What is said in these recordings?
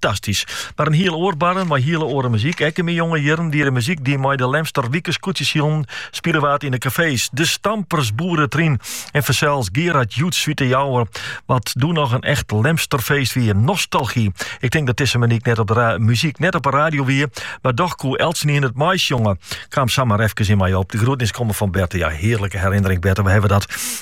Fantastysk. Mar in hiel oar barren mei hiele oare muzyk. Ek yn myn jonge jierren die de muzyk die mei de Lemster wike skûtsjesilen spile waard yn de kafees. De stampers, Boeretryn en fansels Gerard Joe syn Wite Jouwer, wat doe noch in echt Lemsterfeest wie. Nostalgy. Ik tink dat dizze muny- eh muzyk net op de radio wie, mar doch koe eltsenien it meisjonge. Kaam samar efkes yn my op. De groetnis komme fan Berta. Ja, hearlike herinnering Berta, we hawwe dat.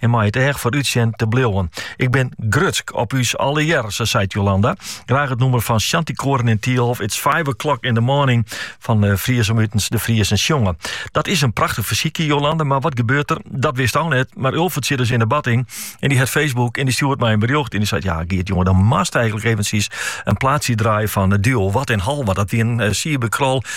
en mei it each foarút sjen te bliuwen. Ik bin grutsk op ús allegearre, seit Jolanda. Graach it nûmer fan shantykoar en Thielhof, It's Five O'Clock in the Morning, fan Fries om utens de Friezen sjongen. Dat is in prachtich fersykje, Jolanda, mar wat gebeurt der? Dat wisto net, mar Ulfert sit dus yn de badding en dy hat Facebook en dy stjoert my in berjocht en dy seit, ja Geert jonge, dan mast eigenlik eventjes in plaatsje draaie fan eh, Duo Wat en Healwat. Dat wie in uh, eh, cybercrawl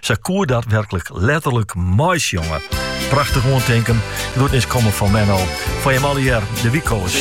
Sy koe dat werklik letterlik meisjonge. Prachtich oantinken. Groetnis komme fan Menno. Foar jim allegear, de wykoas.